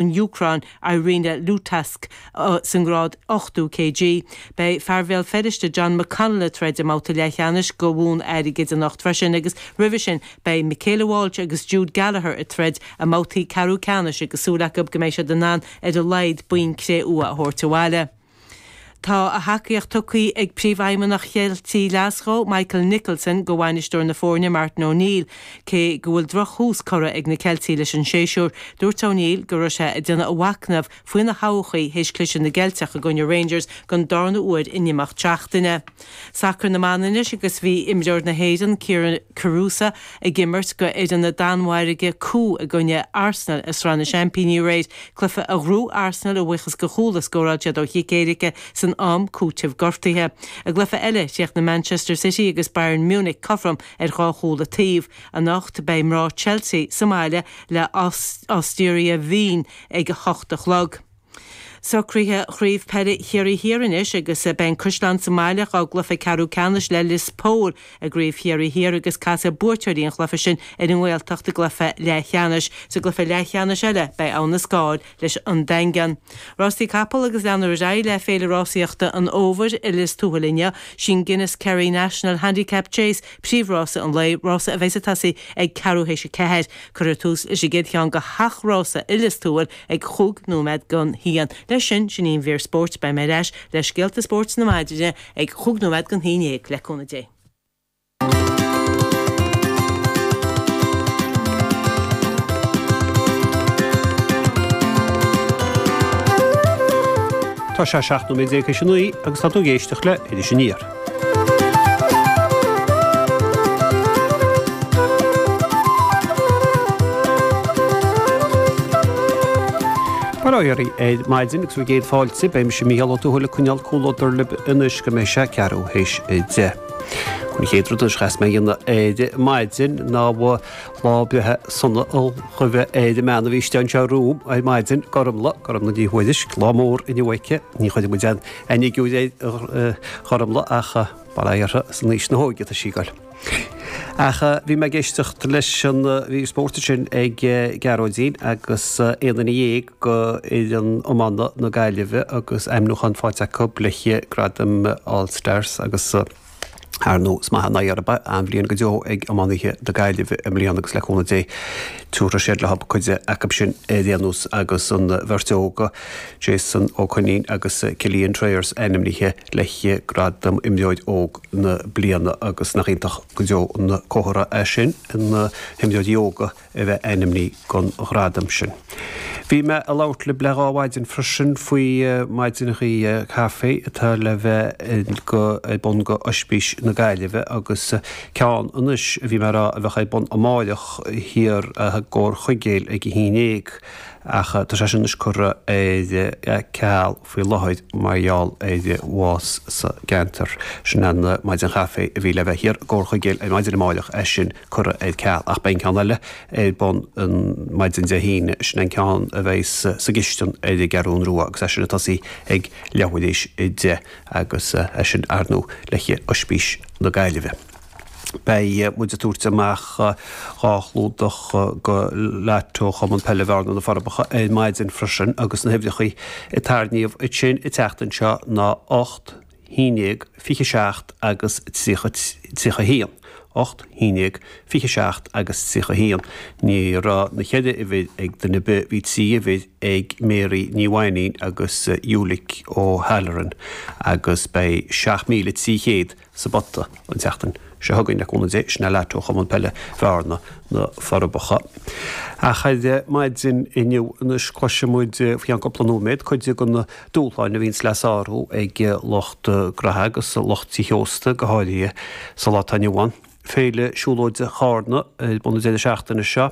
an Úcráin, Iryna Lutatsk, sa ngrád 80 kg. Beidh fear Bhéal Feirste, John McConnell, ag troid i mbabhta leathcheannais do bhonn airgid anocht freisin agus roimhe sin beidh Michaela Walsh agus Jude Gallagher ag troid i mbabhtaí ceathrú ceannais agus súil acu go mbeidh siad in ann ar a laghad boinn cré-umha a thabhairt abhaile. Tá a thacaíocht tugtha ag Príomhfheidhmeannach Cheilt Glasgow, Michael Nicholson, do bhainisteoir na foirne, Martin O'Neill. Cé go bhfuil drochthús curtha ag na Ceiltigh leis an séasúr, dúirt O'Neill go raibh sé ag déanamh a mhacnaimh faoina thodhchaí théis cliseadh na gCeilteach i gcoinne Rangers don darna huair in imeacht seachtaine. Sacar na mBan anois agus bhí imreoir na hÉireann, Kyra Carusa, ag imirt do fhoireann na Danmhairge Køge i gcoinne Arsenal i Sraith na Seaimpíní aréir, cluiche a ghnóthaigh Arsenal a bhuíochas do chúl a scóráil siad ó chic éirice san am cúitimh gortuithe. I gcluiche eile, chríochnaigh Manchester City agus Bayern Munich cothrom ar dhá chúl an taobh. Anocht, beidh mná Chelsea sa mbaile le Austria Wien ag a hocht a chlog. Socruithe Chraobh Peile Chiarraí Thiar anois agus beidh an Caisleán sa mbaile dá gcluiche ceathrú ceannais le Lios Póil i gCraobh Chiarraí Thiar agus casfaidh buaiteoirí an chluiche sin ar an nGaeltacht i gcluiche leathcheannais. Sa gcluiche leathcheannais eile beidh Abhainn an Scáil leis An Daingean. Rástaí Capall agus leanfar ar aghaidh le Féile Rásaíochta an Fhómhair i Lios Tuathail inniu. Sín Guinness Kerry National Handicap Chase príomhrása an lae, rása a bheidh ag tosaí ag ceathrú théis a ceathair. Cuirfear tús leis an gcéad cheann de sheacht rása i Lios Tuathail ag cúig nóiméad don haon. Leis sin, sin í an mhír spóirt, beidh mé ar ais le scéalta spóirt na maidine ag cúig nóiméad don haon déag, le cúnamh Dé. Tá sé seacht nóiméad déag tar éis a naoi agus tá tú ag éisteacht le Iris Aniar. Móra dhaoibh ar maidin agus mo gcéad fáilte, beimis, a Mhícheáil, atá ag coinneáil comhluadar libh anois go mbeidh sé a ceathrú théis a deich. An chéad rud a chaithfeas mé a dhéanamh ar maidin ná lá breithe sona a ghuí ar an mbean a bhí istigh anseo romham ar maidin, Gormfhlaith, Gormfhlaith Ní Thuairisg, lá mór inniu aici, ní chuirfidh muid an. Aon fhigiúr air, a Ghormfhlaith ach mar a déarfá san aois na hóige atá sí ag goil. Ach bhí mé ag éisteacht leis an mhír spóirt sin ag Gearóidín agus aon duine dhéag de fhoireann iomána na Gaillimhe agus ainmniúchán faighte acu le haghaidh gradaim All Stars agus, Ar ndóigh ba mhaith nárbh ea an bhliain go deo ag iománaithe na Gaillimhe i mbliana agus le cúnamh Dé tiúrfaidh siad leo cuid acu sin i ndiaidh an ama agus an bheirt óg, Jason Ó Coinín agus Cillian Trayers ainmnithe le haghaidh gradam imreoir óg na bliana agus nach iontach go deo an comhartha é sin na himreoirí óga a bheith ainmnithe don ghradam sin. Bhí mé a' labhairt libh le dhá mhaidin freisin faoi maidineachaí caife atá le bheith go ar bun do Ospís na Gaillimhe agus ceann anois a bhí mé a rá a bheadh ar bun amáireach thiar i gComhar Chuigéal ag a haon déag ach tá sé sin anois curtha ar ceal faoi láthair mar gheall ar bhás sa gceantar. Sin an maidin chaife a bhí le bheith thiar i gComhar Chuigéal ar maidin amáireach é sin. curtha ar ceal, ach beidh an ceann eile ar bun ar maidin Dé hAoine, sin an ceann a bheas sa gCistin ar an gCeathrún Rua, agus é sin ag tosaí ag leathuair tar éis a deich, agus é sin ar ndóigh le haghaidh Ospís na Gaillimhe. Beidh muid ag tabhairt amach dhá chlúdach do Lotto Chumann Peile Bhearna na Forbacha, ar maidin freisin, agus na huimhreachaí a tarraingíodh ansin an tseachtain seo ná ocht, 11, 27 agus 31, 8, 11, 27 agus 31, Ní raibh na cheithre uimhir ag duine ar bith, bhí trí uimhir ag Mary Ní Mhainnín agus Ulick O'Halloran agus beidh 7,300 sa bpota an tseachtain seo chugainn le cúnamh Dé, sin é Lotto Chumann Peile Bhearna, Na Forbacha. Ach ar maidin inniu anois cloisfidh muid faoi cheann cúpla nóiméad cuid de na. dúshláin a bhíonns le sárú ag lucht graithe agus lucht tí ósta, go háirithe sa lá atá inniu ann. Féile Siúlóide Charna ar bun an deireadh seachtaine seo.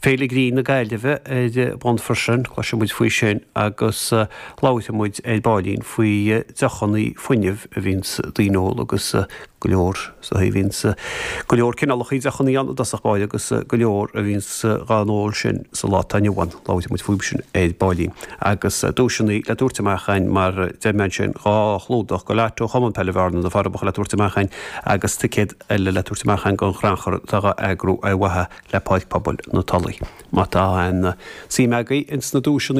Féile Ghrinn na Gaillimhe ar bun freisin, cloisfidh muid faoi sin agus labhróidh muid ar baillín faoi deochannaí fuinnimh a bhíonns daoine ag ól agus go leor sa bhíonns go leor cineálachaí deochannaí ann i dtosach báire agus go leor a bhíonns dhá n-ól sin sa lá atá inniu ann, labhróidh muid fúthu sin ar baillín. Agus duaiseannaí le tabhairt amach againn mar deir mé ansin, dhá chlúdach do Lotto Chumann Peile Bhearna, na Forbacha le tabhairt amach againn agus ticéad eile le tabhairt amach againn don chrannchur atá dhá eagrú ar mhaithe le Páirc Pobail na Tulaí. Má tá aon suim agaibh ins na duaiseannaí